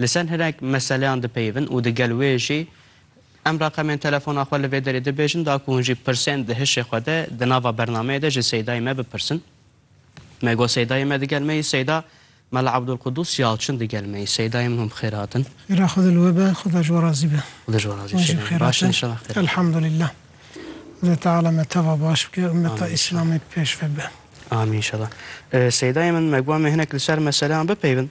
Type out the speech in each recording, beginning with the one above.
Li ser hinek meseleyan dipeyivin û digel wê jî em reqemên telefona xwe li vê derê dibêjin da ku hûn jî pirsên di hişê xwe de di nava bernameyê de ji Seydayê me bipirsin. Me got Seydayê me digel me yî Seyda Mela Abdulkudûs Yalçin digel me yî. Seydayê min hûn bi xêr hatin. Xêra xwe li we be, Xuda ji we razî be. Xuda ji we razî be Seydayê min. Baş in înşallah xêr hatin. Elhamdulillah. Xwedê Teala me teva baş bike, ummeta Îslamê pêşve bibe. Amîn înşallah. Seydayê min me got em ê hinek li ser meseleyan bipeyivin.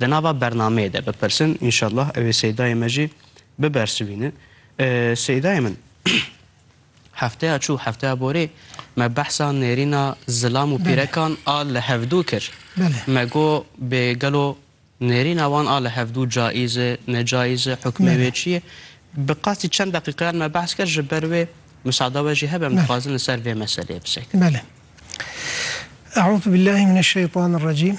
Di nava bernameyê de bipirsin înşallah ew ê Seydayê me jî bibersivînin. Seydayê min hefteya çû hefteya borê me behsa nêrîna zilam û pîrekan a li hevdû kir. Me got bê gelo nêrîna wan a li hevdû cayîz e, necayîz e, hukmê wê çi ye. Bi qasî çend deqîqeyan me behs kir ji ber wê misada we jî hebe em dixwazin li ser vê meseleyê bisekirin. Bele. Eûzubillahî mineşşeytanirrecîm.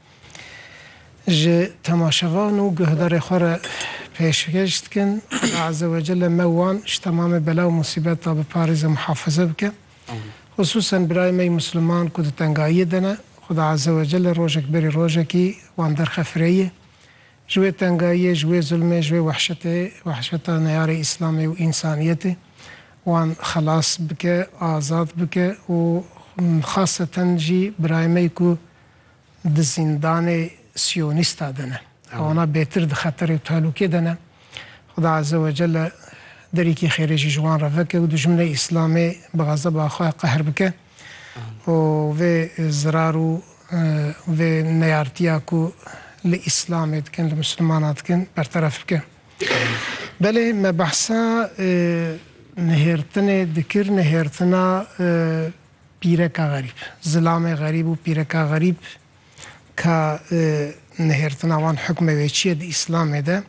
Ji temaşevan û guhdarê xwe re pêşkêş dikin, Xweda Ezewecelle me wan ji temamê bela û musîbet de biparêze muhafize bike. Xusûsen birayê me yê Musliman ku di tengayiyê de ne, Xweda Ezewecelle rojek berî rojekî wan derxe fireyê. Ji wê tengayiyê, ji wê zulmê, ji wê wehşetê, wehşeta neyarê Îslamê û însaniyetê wan xelas bike, azad bike û xaseten jî birayê me yê ku, di zîndanê siyonîsta de ne. Hewana bêtir di xeterê û tehlûkê de ne. Xuda Eze we Celle derîkî xêrê jî ji wan re veke û dijminê Îslamê bi xezeba xwe qehr bike û vê zirar û vê neyartiya ku li Îslamê dikin, li Mislimanan dikin berteref bike. Belê me behsa nihêrtinê dikir, nihêrtina Pîreka xerîb, zilamê xerîb û pîreka xerîb ka nihêrtina wan hukmê wê çi ye di Îslamê de?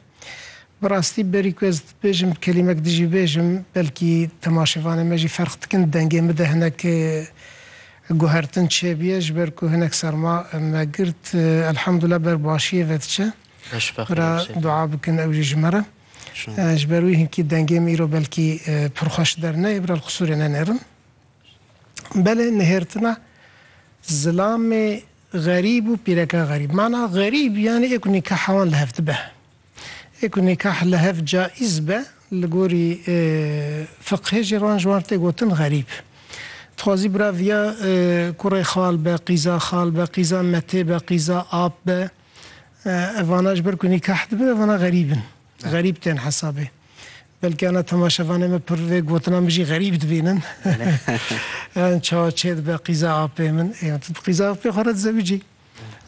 Bi rastî berî ku ez bêjim kelîmek di jî bêjim, belkî temaşêvanê me jî ferq dikin, dengê min de hinek guhertin çêbûye ji ber ku hinek serma me girt. Elhamdulillah ber başiyê ve diçe. Bira dua bikin ew jî ji me re. Ji ber wî hinkî dengê min îro belkî pir xweş derneyê, bira li qisûrê nenêrin. Belê nihêrtina zilamê xerîb û pîreka xerîb. Mana xerîb yanî ê ku nîkah hewan li hev dibe. Ê ku nîkah li hev caiz be li gorî fiqhê jî wan ji wan tê gotin xerîb. Dixwazî bira viya kurê xal be, qîza xal be, qîza metê be, qîza ap be. Evana ji ber ku nîkah dibin evana xerîb in. Xerîb tên hesabê. Belkî ana temaşevanê me pir vê gotina min jî xerîb dibînin. Yan çawa çêdibe qîza apê min. Yan tu bi qîza apê xwe re dizewicî.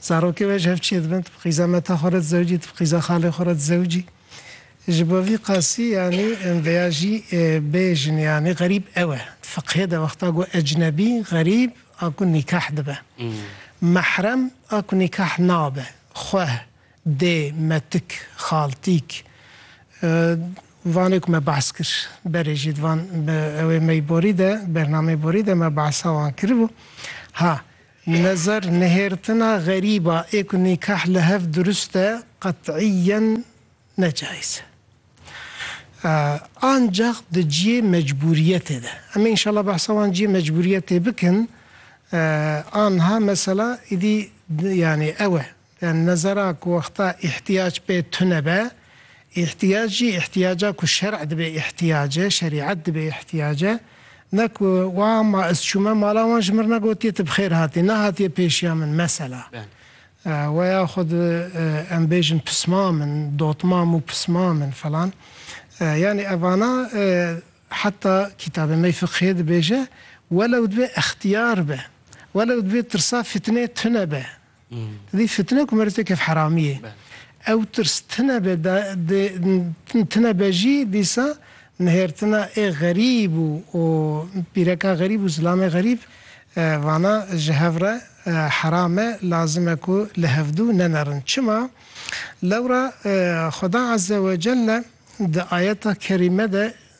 Zarokê we ji hev çêdibin, tu bi qîza meta xwe re dizewicî, tu bi qîza xalê xwe re dizewicî. Ji bo vî qasî yanî em vêya jî bêjin yanî xerîb ew e. Di fiqhê de wexta got ecnebî, xerîb a ku nîkah dibe. Mehrem a ku nîkah nabe. Xweh, Dê me tik, xal, tîk, vanê ku me behs kir berê jî divan bi ew ê me yî borî de, bernameyê borî de me behsa wan kiribû. Ha, nezer nihêrtina xerîba ê ku nîkah li hev durist e qet'îyen ne cayîz e. Ancax di ciyê mecbûriyetê de. Em ê înşallah behsa wan ciyê mecbûriyetê bikin. Anha mesela îdî yanî ew e. Te nezera ku wexta îhtiyac pê tune be, îhtiyac jî îhtiyaca ku şer'e dibe îhtiyac e, şerîet dibe îhtiyac e, ne ku wa ma ez çûme mala wan ji mir ne gotiye tu bi xêr hatî, ne hatiye pêşiya min mesela. We ya xwe di em bêjin pisma min, dotma mû pisma min filan. Yanî evana heta kîtabê me yê fiqhê dibêje welew divê extiyar be, welew divê tirsa fitnê tune be, Dî fitne ku merz kef heramî yê. Ew tirs tine be dê tine be jî dîsa nihêrtina ê xerîb û û pîreka xerîb û zilamê xerîb vana ji hev re heram e lazim e ku li hevdû nemerin. Çima? Lewra Xweda Ezzewecelle di ayeta kerîme de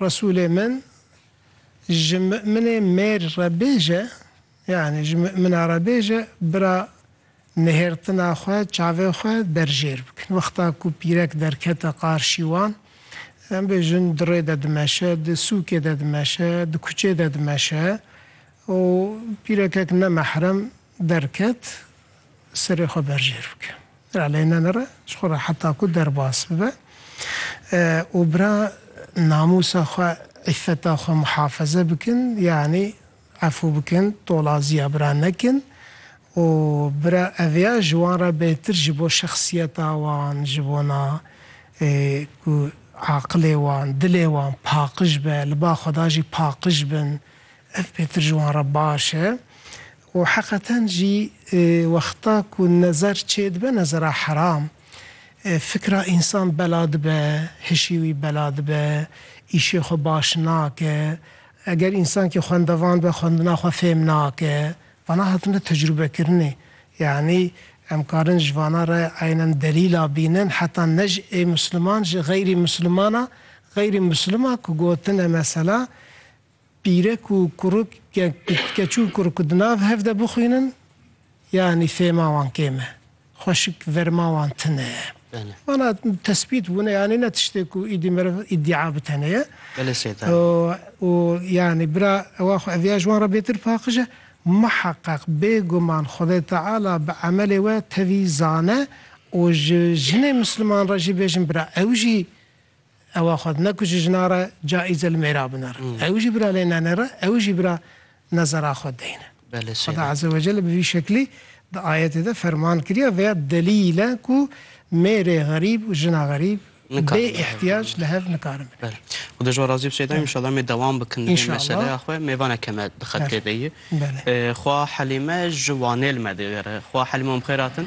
Resûlê min ji mi'minê mêr re bêje, yanî ji mi'mina re bêje, bira nihêrtina xwe, çavên xwe berjêr bikin. Wexta ku pîrek derkete qarşî wan, em bêjin dirê de dimeşe, di sûkê de dimeşe, di kuçê de dimeşe û pîrekek nemehrem Derket, serê xwe berjêr bike. Ra lê ne nere ji xwe re heta ku derbas bibe û bira namûsa xwe, îffeta xwe muhafeze bikin, yanî efû bikin, tolaziya bira nekin û bira ev ya ji wan re bêtir ji bo şexsiyeta wan, ji bona ku aqilê wan, dilê wan paqij be, li ba Xweda jî paqij bin Ev pêtir ji wan re baş e û heqeten jî wexta ku nezer çêdibe, nezera heram, fikra însan bela dibe, hişî wî bela dibe, îşê xwe baş nake. Eger însankî xwendevan be, xwendina xwe fêm nake. Vana hatine tecrûbekirinê. Yanî em karin ji vana re eynen delîla bînin heta ne ji ê misliman ji xeyrî mislimana, xeyrî mislima ku gotine mesela, Pîrek û kuruk keç û kuruk di nav hev de bixwînin yanî fêhma wan kêm e, xweşik verma wan tune ye. Wana tesbît bûne yanî ne tiştê ku îdî meriv îdîa bi tenê ye. Belê Seytani. Û yanî bira ewa xwe eviya ji wan re bêtir paqij e. Muheqeq bêguman Xwedê Teala bi emelê we tevî zane û ji jinê Misliman re jî bêjin bira ew jî Ewa xwedina ku ji jina re caîze li mêra bine re. Ew jî bira lê nenê re, ew jî bira nezera xwe deyne. Xweda Ezewecelle bi vî şeklî di ayetê de ferman kiriye veya delîl e ku mêrê xerîb û jina xerîb bê îhtîyac li hev nikarin bibin. Xweda ji we razî be Seyda. Înşallah em ê dewam bikin di vê meseleya xwe. Mêvan eke me di xettê de ye. Xwe Helîme ji Wanê li me digere. Xwe Helîme û em xêr hatin.